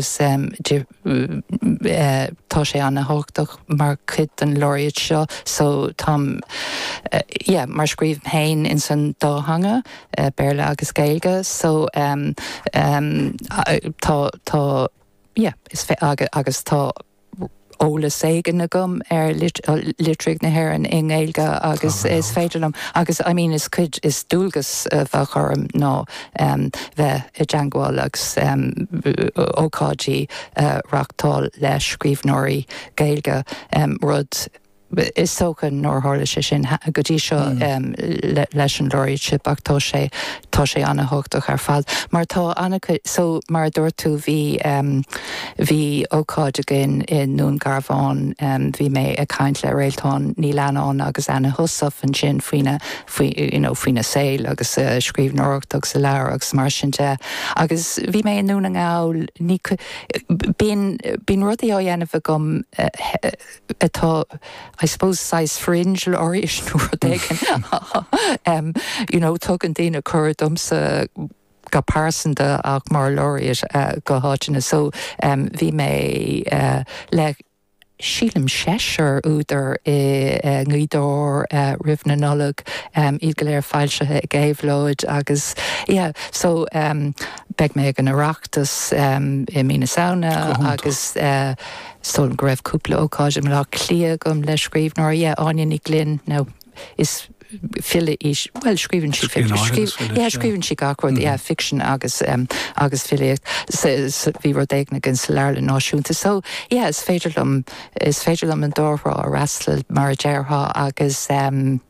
agus tá sé an-tábhachtach mar chuid den Laureate seo so tá yeah mar scríobhaim féin ins an dá theanga, Béarla agus Gaeilge, so tá tá yeah is agus tá. eolas éigin agam ar litríocht na hÉireann i nGaeilge agus is féidir liom, agus I mean is cuid, is dualgas a bheadh orm ná bheith i dteangmháil agus ócáidí a reachtáil le scríbhneoirí Gaeilge, rud. Is dócha nár tharla sé sin go dtí seo leis an Laureateship ach tá sé tá sé an-thábhachtach ar fad mar tá an-chuid so mar a dúirt tú bhí bhí ócáid againn i nDún Garbhán bhí mé ag caint le Réaltán Ní Leannáin agus Anna Heussaff ansin faoina faoi you know faoina saol agus a scríbhneoireacht agus a leabhair agus mar sin de agus bhí mé i nDún na nGall ní bíonn bíonn rudaí á dhéanamh agam atá I suppose saghas fringe laureate nó rud éigin you know tugann daoine cuireadh domsa go pearsanta ach mar laureate go háiteanna so bhí mé le sílim seisear údar i nGaoth Dobhair roimh na Nollag, iad go léir foilsithe ag Éabhlóid agus yeah so beidh mé ag an Oireachtas i mí na Samhna agus. Sílim go raibh cúpla ócáid i mBaile Átha Cliath agam le scríbhneoir, yeah, Áine Ní Ghlinn, now is file í, bhuel, scríobhann sí fic, Scríbhneoir agus file, yeah, yeah. scríobhann sí gach rud, yeah, fiction agus, um, agus filíocht. So, so, bhí rud éigin againn sa Leabharlann Náisiúnta. So, yeah, is féidir liom, is féidir liom an dá thrá a fhreastal, mar a déarfá, agus, um,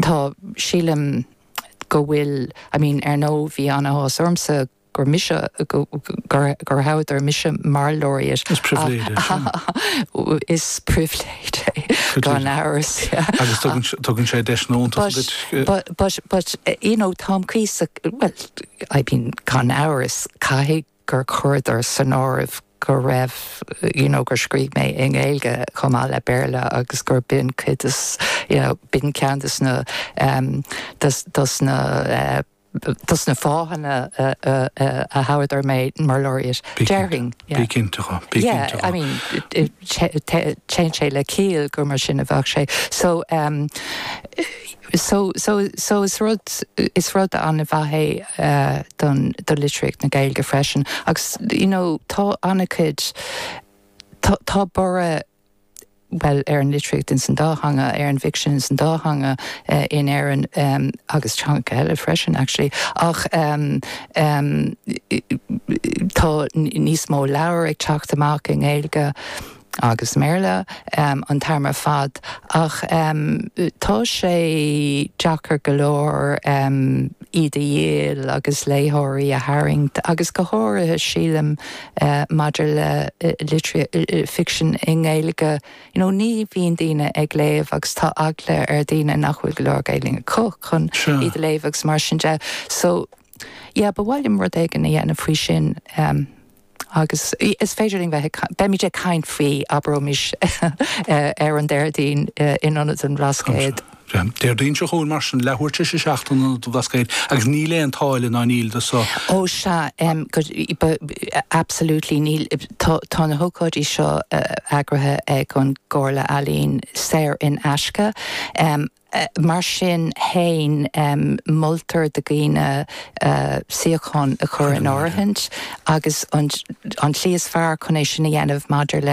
tá, sílim go bhfuil, I mean, ar ndóigh bhí an-áthas ormsa, gur mise, gur thoghadar mise mar Laureate. Is pribhléid é sin. Is pribhléid é, gan amhras. Agus tugann sé deis iontach duit. But, but, but, you know, táim caosa, well, I mean, gan amhras, caithfidh gur chuireadar san áireamh go raibh, you know, gur scríobh mé i nGaeilge chomh maith le Béarla agus gurb in cuid de, you know, b'in ceann de na, de na, dos na fáthanna a thoghadar mé, mar Laureate, déarfainn. Bí cinnte de, bí cinnte de. Yeah, I mean, téann sé le ciall gur mar sin a bheadh sé. So, um, so, so, so is rud, is rud an-mhaith é don, do litríocht na Gaeilge freisin. Agus, you know, tá an-chuid, tá, tá borradh, bhuel, ar an litríocht ins an dá theanga, ar an bhficsean ins an dá theanga in Éirinn agus teangacha eile freisin, actually, ach tá níos mó leabhar ag teacht amach i nGaeilge agus i mBéarla an t-am ar fad ach tá sé deacair go leor iad a dhíol agus léitheoirí a tharraingt agus go háirithe, sílim. Maidir le ficsean i nGaeilge, you know, ní bhíonn daoine ag léamh agus tá eagla ar dhaoine nach bhfuil go leor Gaeilge acu chun iad a léamh agus mar sin de. So, yeah, ba mhaith liom rud éigin a dhéanamh faoi sin agus is féidir linn bheith, beimid ag caint faoi, abraimis, ar an Déardaoin in Ionad an Bhlascaoid. Déardaoin seo chugainn, mar sin, leathuair tar éis a seacht in Ionad an Bhlascaoid, agus níl aon táille ná éinní den sórt san. Absolutely níl. Tá na hócáidí seo eagraithe ag an gComhairle Ealaíon saor in aisce. Mar sin féin, moltar do dhaoine suíochán a chur in áirithint agus an tslí is fearr chun é sin a dhéanamh maidir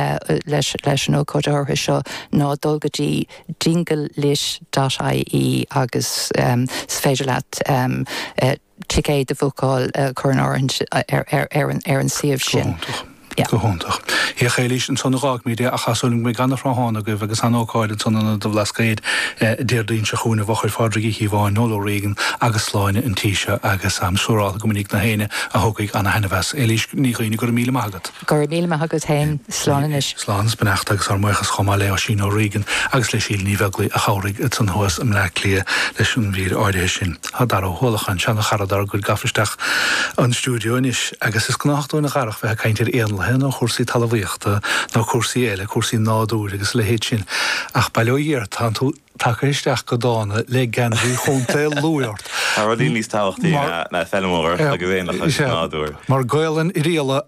leis an ócáid áirithe seo ná dul go dtí Dingle Lit dot ie agus is féidir leat ticéad a bhucáil, a chur in áirithint, ar an suíomh sin. Go hiontach. Féach, a Éilís, ansan a dh'fhágfaimid é, ach tá súil agam go mbeidh an-thráthnóna agaibh agus an-ócáid ansan in Ionad an Bhlascaoid Déardaoin seo chugainn i bhfochair Phádraig Uí Chíobháin, Noel O'Regan agus Sláine an tí seo agus táim siúráilte go mbainfidh gach éinne a thiocfaidh an-thaithneamh as. Éilís Ní Dhuibhne, go raibh míle maith agat. Go raibh míle maith agat féin. Slán anois. Slán is beannacht agus ár mbuíochas chomh maith le Oisín Ó Riain agus le Síle Ní Bheaglaoi a chabhraigh ansan thuas i mBleá Cliath leis an mhír áirithe sin. Tá Daire Ó hUallacháin, seana-chara dár gcuid gafa isteach an stiúideo anois agus is gnách dúinn a Dhaire a bheith ag caint ar éanlaithe nó chúrsaí talamhaíochta nó cúrsaí eile, cúrsaí nádúir agus a leithéid sin ach bail ó Dhia ort tánn tú tagtha isteach go dána le geansaí Chontae Lú ort! Tá rudaí níos tábhachtaí ná feilmeoireacht agus éanlaithe agus nádúr. Mar Gaolainn Oirialla agus.